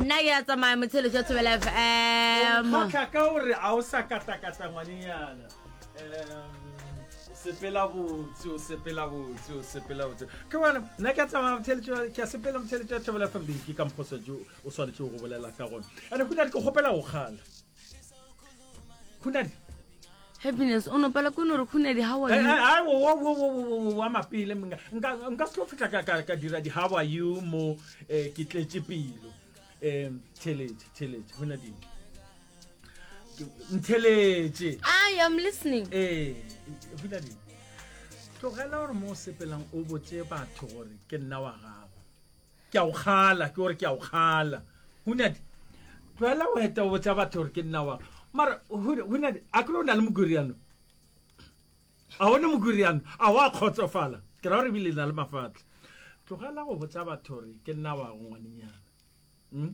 nna ke a tsamaya motshelo jwa thobela fm kgotla ka o re a o sa katakata ngwanenyana sepela botse o sepela botse o sepela botse ke bona nna ke a tsamaya motheletso ke a sepela motheletso ya thobela fm beke ka mphosa jo o swanetšego go bolela ka gona ande go na le ke kgopela go kgala khunadi happiness o nopela ko no re khunadi how are you wa mapele mna nka nka se tlo fitla ka ka ka dira di how are you mo eh, ke tletse pelo um theletše theletše khunadi ntheletše i am listening eh khunadi tlogela gore mo o sepelang o botse batho gore ke nna wa gago Ke a o kgala, ke o re ke a o kgala. Hunyadi, tlohela go eta o botsa batho gore ke nna wang. Mara, Hunyadi, a kere o na le mogwiriano? A o ne mogwiriano? A wa kgotsofala? Ke ra gore ebile na le mafatlha. Tlogela go botsa batho gore ke nna wang, ngwanenyana. Hmm?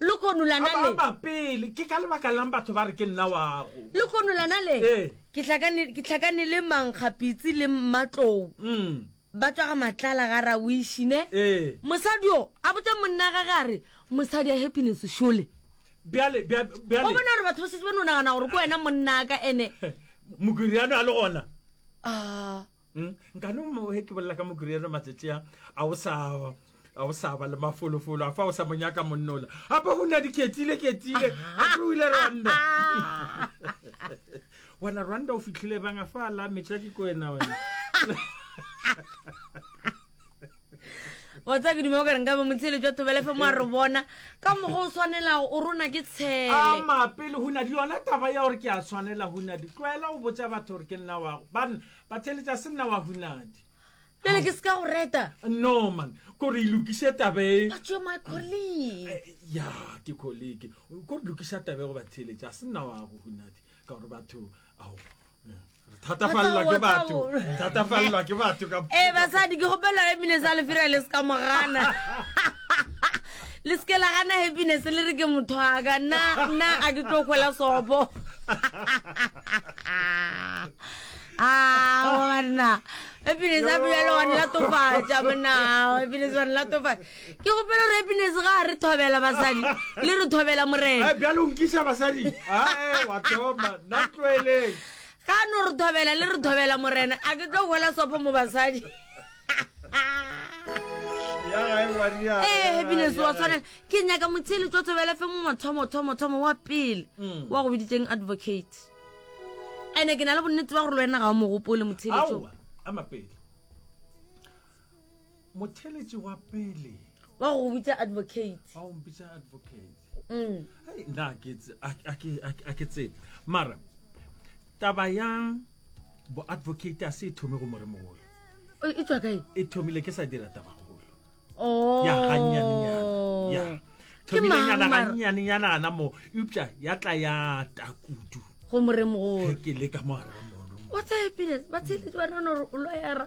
Lehono la na le. Ababa pele, ke ka lebaka la'ng batho ba re ke nna wa'ago? Lehono la na le. Ee. Ke hlakane, ke hlakane le mankgapitsi le mmatlou. Umm. Ba tšwa ga Matlala ga Rawiši, ne? Ee. Mosadi yo, a botša monna gage a re, Mosadi a Happiness šole. Bjale, bja, bjale. O bona gore batho ba šetše ba no nagana gore ke wena monna'aka, ene. Mokiriano a le gona? Aa. Mm, nka no mo he ke bolela ka mokurere matsatsi a a o sa a o sa ba le mafolofolo a fa o sa mo nyaka monnola gape go na di ketile ketile gape o ile rwanda wena rwanda o fitlhile banga fa la metša ke ko wena wena wa tsa ke duma o ka reng ka ba motshele jwa thobelefe mo a re bona ka mogo o tshwanelago o rona ke tshele a mapele hunadi yona taba ya gore ke a tshwanela hunadi tlwaela o botsa batho gore ke nna wago bana ba theletsa se nna wa hunadi pele ke seka go reta no man kore e lokise tabe but you're my colleague eh, ya ke colleague kore lokisa tabe go ba theletsa se nna wago hunadi ka gore batho ao thatafalela ke batho thatafalela ke batho ka ee basadi ke gopela happiness a lefira le se ka mogana le seke la gana happiness le re ke motho aka nna nna a ke tlo kgwela sopo awanna ah, happiness a bjalo wane la tofatša monna happiness wane la tofatša Ke gopela gore happiness ga a re thobela basadi le re thobela morena Eh, bjalo nkisa basadi ae wa thoma nna tloeleng ga no re thobela le re thobela morena a ke tlo gola sopo mo basadi ya gae ngwaria ee Eh, happiness wa tshwanela ke nyaka motshele tswa thobela fe mo mathomo thomo thomo wa pele Mm. wa go biditseng advocate ande ke na le bonnete ba gore le wena ga o mogopole motshele tso aowa a mapedi motheletši wa pele wa go bitsa advocate wa go bitsa advocate mm. hey, na a ke tsebe mara taba ya bo-advocate a se e thome go moremogolo e tswa kae e thomile ke sa dira taba golo oh. ya ganyanenyana thomilenyana ganyanenyana ana mo eupša ya tla ya takudu go moremogolo ke le ka mo gare ga moremogolo wa tsaya pele ba tsheletsi ba nana gore o loyera